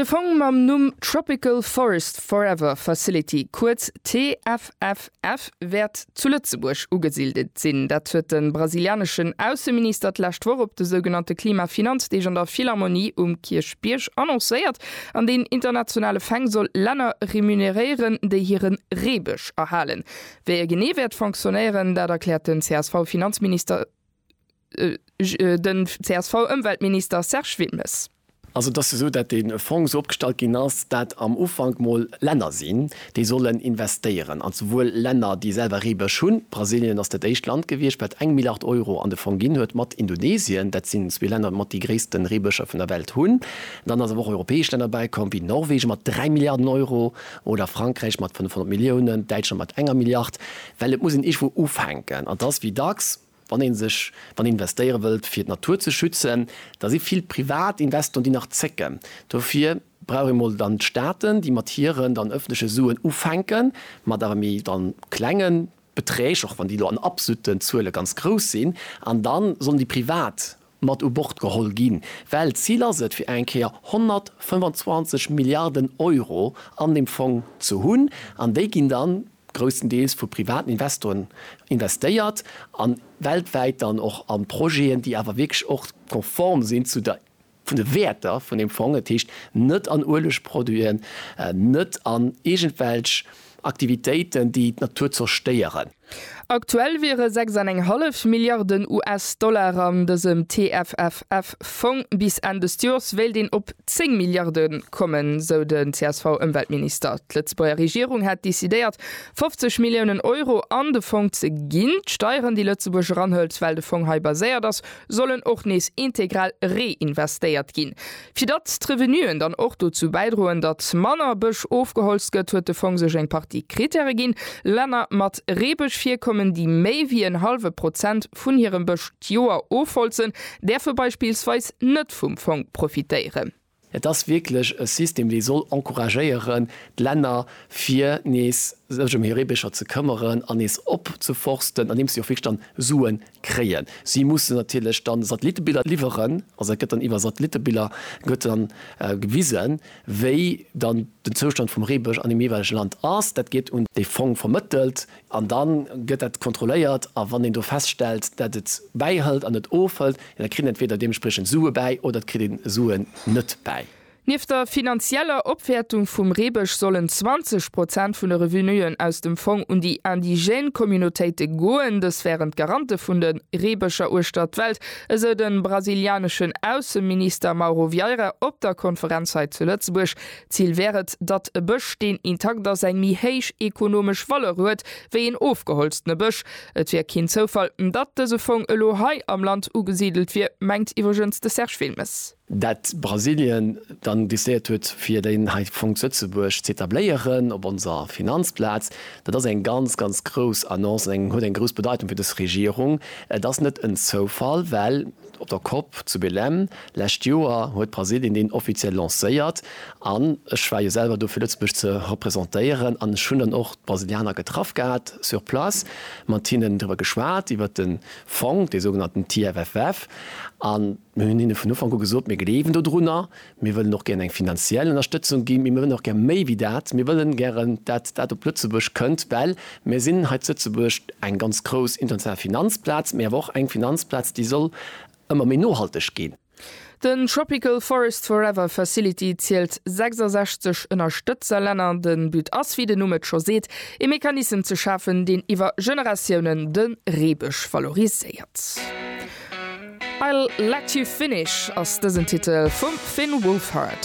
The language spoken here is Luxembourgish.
De Fong mam Numm Tropical Forest Forever Facility, kuerz TFFF, wäert zu Lëtzebuerg ugesildet sinn. Dat huet de brasilianeschen Ausseminister d'lescht Woch op de sougenannte Klima-Finanzdeeg an der Philharmonie um Kierchbierg annoncéiert, an deen internationale Feng soll Länner remuneréieren, déi hire Reebësch erhalen. Wéi e genee wäert fonctionnéieren, dat erkläert den CSV-Finanzminister. Den CSV-Ëmweltminister Serge Wilmes. Also et ass jo esou, datt dee Fong esou opgestallt ginn ass, datt am Ufank mol Länner sinn, déi sollen investéieren. An souwuel Länner, déi selwer Reebësch hunn, Brasilien ass dat éischt Land gewiescht, wat eng Milliard Euro an de Fong ginn huet, mat Indonesien, dat sinn zwee Länner, déi mat déi gréisste Reebëscher vun der Welt hunn. Dann ass awer och europäesch Länner bäikomm, wéi Norwegen mat dräi Milliarden Euro oder Frankräich mat 500 Milliounen, Däitschland mat enger Milliard, well et muss een iergendwou ufänken. An et ass wéi dacks. Wann een sech, wann een investéiere wëllt fir d'Natur ze schützen, da si vill privat Investoren déi nach zécken. Dofir brauch een emol dann d'Staaten déi mat hiren dann ëffentleche Suen ufänken, mat awer méi dann klenge Beträg, och wann déi elo an absoluten Zuele ganz grouss sinn, an dann sollen déi privat mat u Bord geholl ginn, well d'Zil ass et, fir eng Kéier 125 Milliarden Euro an deem Fong ze hunn, an déi ginn da grousstendeels vu privaten Investoren investéiert an weltwäit dann och a Projeten, déi awer wierklech och konform sinn zu der, vun de Wäerter vun deem Fong, dat heescht net an Uelegproduiten, net an iergendwelch Aktivitéiten, déi d'Natur zerstéieren. Aktuell wiere 6 an eng hallef Milliarden US-Dollar an dësem TFFF-Fong. Bis Enn dëst Joers wéilt een op 10 Milliarde kommen, sou den CSV-Ëmweltminister. D'Lëtzebuerger Regierung hätt decidéiert, 50 Milliounen Euro an de Fong ze ginn. D'Steieren, déi Lëtzebuerg eranhëlt, well de Fong hei baséiert ass, sollen och nees integral reinvestéiert ginn. Fir datt d'Revenuen dann och dozou bäidroen, datt manner Bësch ofgeholzt gëtt, huet de Fong sech eng Partie Krittäre ginn. Länner mat Reebëschvirkommen, déi méi wéi en hallwe Prozent vun hirem Bësch d'Joer ofholzen, däerfe beispillsweis net vum Fong profitéieren. Et ass wierklech e System, dee soll encouragéieren, d'Länner fir nees sech ëm hir Reebëscher ze këmmeren an nees opzeforsten, andeems si och wierklech dann Suen kréien. Si mussen natierlech dann Satellittebiller liwweren, also dat gëtt dann iwwer Satellittebiller gëtt dann gewisen, wéi dann den Zoustand vum Reebësch an deem jeeweilege Land ass. Dat gétt un dee Fong vermëttelt an da gëtt dat kontrolléiert. A wann een do feststellt, dat et bäihëlt an et ofhëlt, da kritt een entweder deementspriechend Sue bäi oder et kritt ee Suen net bäi. Nieft der finanzieller Opwäertung vum Reebësch sollen 20 Prozent vun de Revenuen aus dem Fong un déi indigène Communautéite goen. Dës wären d'Garante vun de Reebëscher uechter d'Welt, esou de brasilianeschen Ausseminister Mauro Vieira op der Konferenz hei zu Lëtzebuerg. D'Zil wär et, datt e Bësch, deen intakt ass, eng méi héich ekonomesch Valeur huet, wéi een ofgeholztene Bësch. Et wier keen Zoufall, datt dëse Fong elo hei am Land ugesidelt wier, mengt iwwregens de Serge Wilmes. dat Brasilien dann décidéiert huet fir deen hei Fong zu Lëtzebuerg z'etabléieren op onser Finanzplaz, dat ass eng ganz, ganz grouss Annonce an eng huet eng grouss Bedeitung fir dës Regierung. Et ass net en Zoufall, well op der Cop zu Belém lescht Joer huet Brasilien deen offiziell lancéiert an ech war jo selwer do fir Lëtzebuerg ze representéieren an ech hunn dann och d'Brasilianer getraff gehat sur place, mat hinnen driwwer geschwat iwwert de Fong, dee sougenannten TFFF, an mir hunn hinne vun Ufank u gesot, mir gleewen dodrunner, mir wëllen och gären eng finanziell Ënnerstëtzung ginn, mee mir wëllen och gär méi wéi dat, mir wëllen gären, dat dat op Lëtzebuerg kënnt, well mir sinn hei zu Lëtzebuerg eng ganz grouss international Finanzplaz, mee awer och eng Finanzplaz, déi soll ëmmer méi nohalteg ginn. Den Tropical Forest Forever Facility zielt 66 Ënnerstëtzerlänner. De But ass, wéi den Numm et scho seet, ee Mechanissem ze schafen, deen iwwer Generatiounen de Reebësch valoriséiert. I'll Let You Finish ass dësen Titel vum Finn Wolfhard.